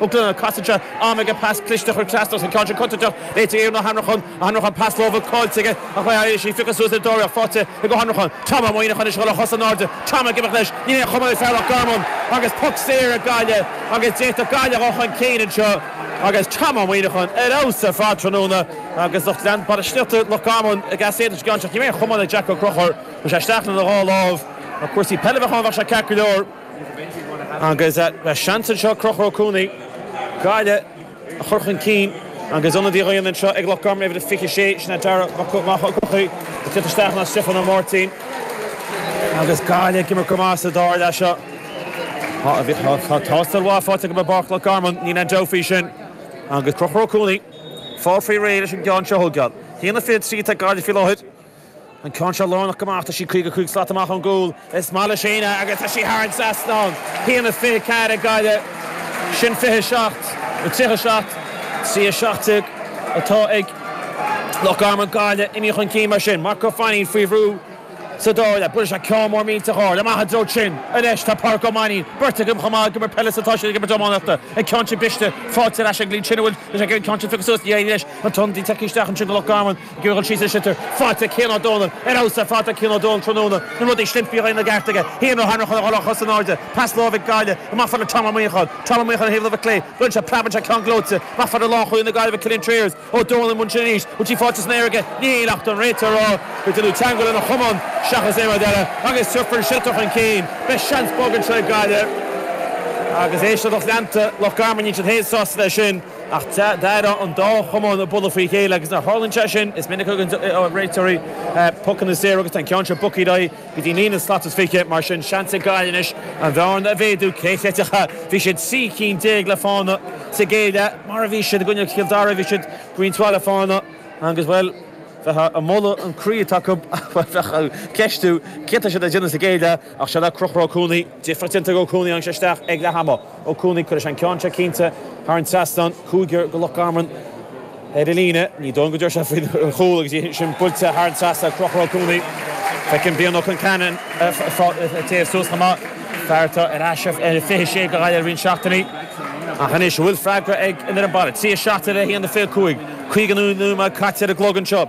Uclualadh, Casadh sé am aige pas cliste a chur trasna os a chionn. Sé contúirteach ach éiríonn le Ó hAnracháin, Ó hAnracháin, pas láimhe caillte aige ach éiríonn leis é a phiocadh suas le dáréag faighte ag Ó hAnracháin. Tom Ó Muineacháin ag dul ar cosa in airde, Tom ag imeacht leis, ní hé a chuma le fear Loch Garman agus poc saor ag Gaillimh agus seans ag Gaillimh a dhul chun cinn anseo agus Tom Ó Muineacháin ar fheabhas ar fad tráthnóna agus lucht leanúna Bhaile Sléibhte Loch Garman ag easaontú sa gceann seo ach ní raibh a chamán ag Jack Ó Conchúir, chuaigh sé isteach lena dhá láimh, dá mba cúrsaí peile a bheadh ann bheadh sé ceart go leor. Agus seans anseo ag Conchúr Ó Cuanaigh Gaillimh a chur chun cinn agus ionadaí á dhéanamh anseo ag Loch Garman uimhir a 26, sin é Darragh Mac Eochaidh, ag teacht isteach in áit Stiofán Ó Máirtín. Agus Gaillimh ag imirt go maith sa dara leath seo. Tá tástáil mhaith faighte acu i bPáirc Loch Garman, níl aon dabht faoi sin. Agus Conchúr Ó Cuanaigh ag fáil faoi réir leis an gceann seo a thógáil. 1-23 atá ag Gaillimh faoi láthair. An ceann seo lárnach go maith, tá sí 55 slat amach ón gcúl. Is maith le Sheena agus tá sí thar an trasnán. Sin 1-24 ag Gaillimh, sin 27 nó 37 trí 17 atá ag Loch Garman. Gaillimh imithe chun cinn mar sin. Mark Ó Fainín faoi bhrú sa dara leath. Buaileann sé ceann mór millteach ard amach i dtreo Chin. Anois tá Pádraic Ó Mainín beirt acu chomh maith ag imirt peile is atá siad ag imirt iománaíochta. An ceann sin briste, faighte ar ais ag Lee Chin an bhfuil an ceann sin tugtha suas. Ní éiríonn leis an tonn tagtha isteach ansin do Loch Garman. Gheobhaidh sí an sliotar faighte ag Cian Ó Dónaill ar fheabhas, ar fad Cian Ó Dónaill tráthnóna, na rudaí a shlinfíodh aon rud ceart aige, haon rud tharraing chun a dhul ar chos in airde, pas láimhe ag Gaillimh, amach fad le Tom Ó Muineacháin, Tom Ó Muineacháin taobh na láimhe clé, go raibh sé preab anseo ceann gleoite, amach fad le lánchúlaí na Gaillimhe Cillian Trayers, Ó Dónaill i mbun sin arís, poc saor faighte san aer aige, ní hea ach tá an réiteoir ag rá, go dtiocfadh teagmháil lena chamán seachas aon rud eile, agus tabharfar an sliotar chun cinn, beidh seans beag anseo ag Gaillimh, agus éist, lucht leanta Loch Garman, níl siad fhéin sásta leis sin. Ach d'airigh an dá chamán ag bualadh faoi chéile agus nuair a tharlaíonn sé sin, is minic a thugann réiteoirí pucanna saora agus tá an ceann seo bogtha ar aghaidh go dtí líne aon slat is fiche. Mar sin, seans ag Gaillimh anois an bhearna a mhéadú. Cé chreidfeadh é? Bhí siad trí cinn déag le fána sa gcéad leath, mar a bhí siad i gcoinne Chill Dara, bhí siad faoin tráth le fána agus, bhuel, bheifeá ag moladh an croí atá acu, bhuel, bheifeá ag ceistiú céard atá siad ag déanamh sa gcéad leath. Ach seo é Conchúr Ó Cuanaigh, difríocht déanta ag Ó Cuanaigh a tháinig isteach ag leath ama. Ó Cuanaigh, Cuirfidh sé an ceann seo cinnte thar an trasnán cúigear ag Loch Garman ar an líne. Ní dóigh liom go dtiocfaidh sé faoi chúl agus é sin buailte thar an trasnán, Conchúr Ó Cuanaigh. Feicim Brian Ó Conceanainn ag téamh suas chomh maith, fear atá ar ais ar an fiche sé ag Gaillimh le roinnt seachtainí. Ach anois, an bhfuil freagra ag an fhoireann baile? Trí a seacht déag, a haon a fiche cúig. Caoga nóiméad caite ar an gclog anseo.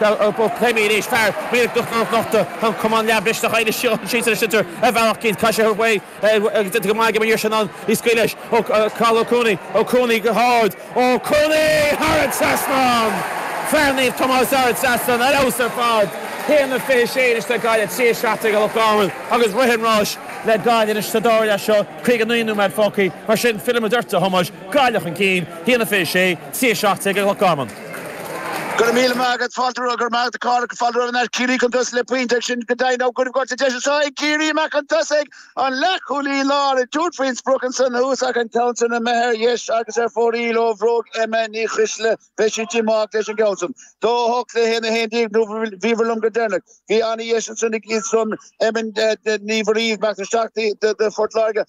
Ba chuma anois is fearr mar go nochta an cumann leathmhisneach oighir seo an séasúr seo ar bhealach cinnte. Tá sé déanta go maith ag an mhír sin ann is scaoil leis ó Cathal Ó Cuanaigh, Ó Cuanaigh go hard, Ó Cuanaigh thar an trasnán! Fear Naomh Tomás thar an trasnán ar fheabhas ar fad. 1-26 anois ag Gaillimh, 3-17 ag Loch Garman agus rith an ráis le Gaillimh anois sa dara leath seo, 59 nóiméad fágtha. Mar sin, fillfidh muid ort, a Thomáis. Gaillimh chun cinn, 1-26, CA 17 ag Loch Garman. Go raibh míle maith agat Fáilte roimh go raibh maith Cork Fáilte roimh an Art Ciarraí chun tosaigh le pointe ag sin go deimhin á gcuireadh goirt sa deis anseo ag Ciarraí amach chun tosaigh an leathchúlaí láir ag tabhairt faoin sprioc ansan thuas ach an ceann san imithe ar dheis agus ar fóraoil ó bhróg Emma Ní Choisdealbha beidh sí díomách leis an gceann san 2-8 le 1-11 nó bhíomhar liom go deireanach bhí an-dheis ansan ag iadsan Emma Ní Mhuirí meastar seachtaí de Phort Láirge